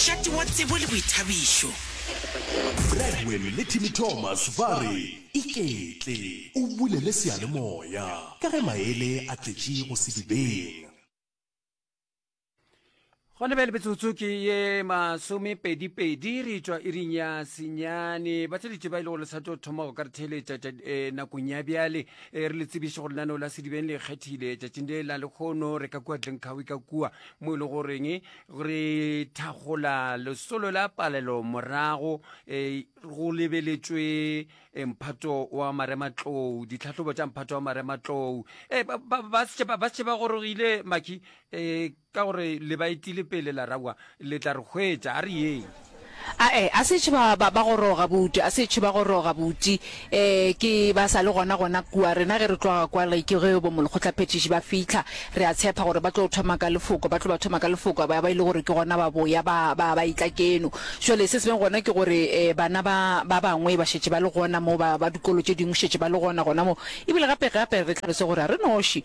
Tlati wa tsebo le boithabišo. Bradwell le Timmy Thomas ba re, Iketle o bulele seyalemoya ka ge maele a tletše go sedibeng. Gona bjale metsotso ke ye masomepedipedi re tšwa iring ya senyane. Batheletše ba e le gore le sa tlo thoma go ka re theeletša eh, nakong ya bjale eh, re le tsebiše gore lenaneo la sedibeng le kgethile tšatšing le la lekgono re ka kua dlenkgawi ka kua mo e le goreng re thagola lesolo la palelo morago e, go lebeletšwe e, mphato wa marematlou ditlhahlobo tša mphato wa marematlou e, ba se ba gorogile maki ka gore le ba etile pele la rawa le tla re hwetša a re yeng Ae, a se etšwe ba, ba, ba goroga, bouto, a se etšwe ba goroga, bouti. E, ke, ba sa le gona, gona kua. Rena ge re tloga kwa, re, ke ge bomolekgotlaphethiši ba fihla, re a tshepa gore ba tlo thoma ka Lefoko, ba tlo ba thoma ka Lefoko, a ba, a ba e le gore ke gona ba boya, ba, ba, ba etla keno. Bjale se se beng gona ke gore, e, bana ba, ba bangwe ba šetše ba le gona mo, ba, ba dikolo tše dingwe šetše ba le gona, gona mo. Ebile gape, gape re tlhalose gore ga re noši.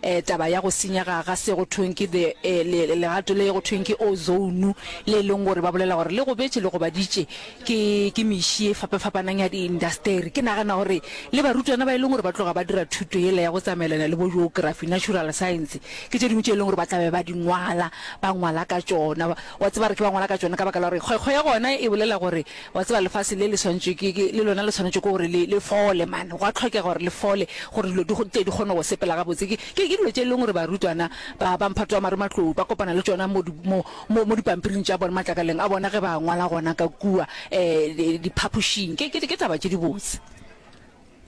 eh, taba ya go senyega ga se go thweng ke the eh, le- le- legato le go thweng ke ozone le e leng gore ba bolela gore le gobetše le gobaditše ke ke meši e fapafapanang ya diindasteri ke nagana gore le barutwana ba e leng gore ba tloga ba dira thuto yela ya go tsamaelana le bo geography natural science ke tše dingwe tše e leng gore ba tlabe ba di ngwala ba ngwala ka tšona wa tseba re ke ba ngwala ka tšona ka baka la gore kgwekgwe ya gona e bolela gore Wa tseba, lefase le le swantšwe ke, ke, le lona le swanetšwe ke gore le, le fole, mane. Gwa tlhokega gore le fole, gore dilo di, tle di kgone go sepela gabotse. Ke, ke, ke dilo tše e leng gore barutwana ba, ba mphato wa marematlou ba kopana le tšona mo di, mo, mo, mo dipampiring tša bona, matlakaleng a bona ge ba ngwala gona ka kua, eh, di, diphapošing. Ke, ke, ke taba tše dibotse.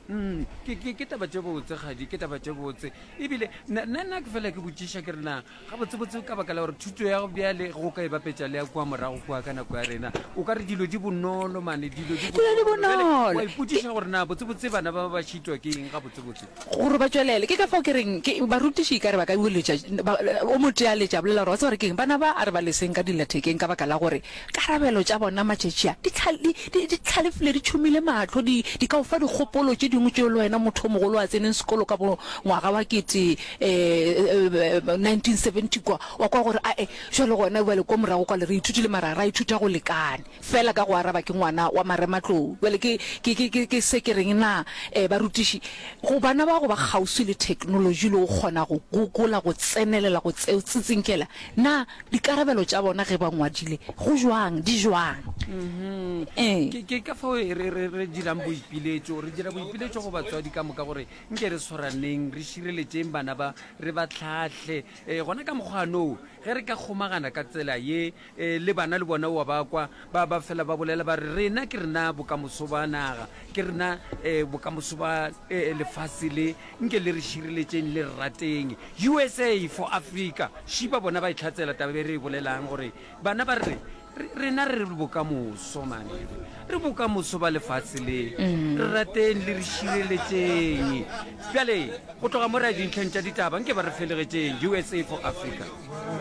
Mm, ke, ke, ke taba tše botse kgadi ke taba tše botse ebile nna ke fela ke botšiša ke rena gabotsebotse ka baka la gore thuto ya go bjale go ka e bapetša le ya kua morago kua ka nako ya rena o ka re dilo di bonolo mane dilo di bonolo ipotšiša gore na botsebotse bana ba ba šitwa ke eng gabotsebotse gore ba tšwelele ke ka fao ke reng barutiši ka re ba ka boletša o motealetša bolela gore wa tseba gore ke eng bana ba a re ba leseng ka dillathekeng ka baka la gore Karabelo tša bona matšatši a di tlha, di, di, di tlhalefile, di tšhomile mahlo, di, di ka o fa dikgopolo tše dingwe tšeo le wena motho o mogolo a tseneng sekolo ka bo ngwaga wa kete um 1970 kwa, wa kwa gore ae, bjale gona bjale kwa morago kwale re ithutile mara ra ithuta go lekane fela ka go araba ke ngwana wa marematlou. Bjale ke, ke, ke, ke, ke se ke reng na um barutiši go bana ba go ba kgauswi le theknolotši le go kgona go gogola, go tsenelela go tseo, tsitsinkela Na dikarabelo tša bona ge ba ngwadile go jwang, di jwang? Ee. Ke- ke ka fao re re- re- re dirang boipiletšo re dira boipiletšo go batswadi ka moka gore nke re tshwaraneng re šireletšeng bana ba re ba hlahle um gona ka mokgwanoo ge re ka kgomagana ka tsela ye um le bana le bona wa ba kwa Ba ba fela ba bolela ba re, Rena ke rena bokamoso ba naga, ke rena eh, bokamoso ba eh, lefase le, nke le re šireletšeng le re rateng. USA for Africa, šiba bona ba e tlhatsela taba e re e bolelang gore bana ba re re- rena re re bokamoso mane re bokamoso ba lefase le re rateng le re šireletšeng bjale go tloga mo re ya dintlheng tša ditaba nke ba re felegetšeng usa for africa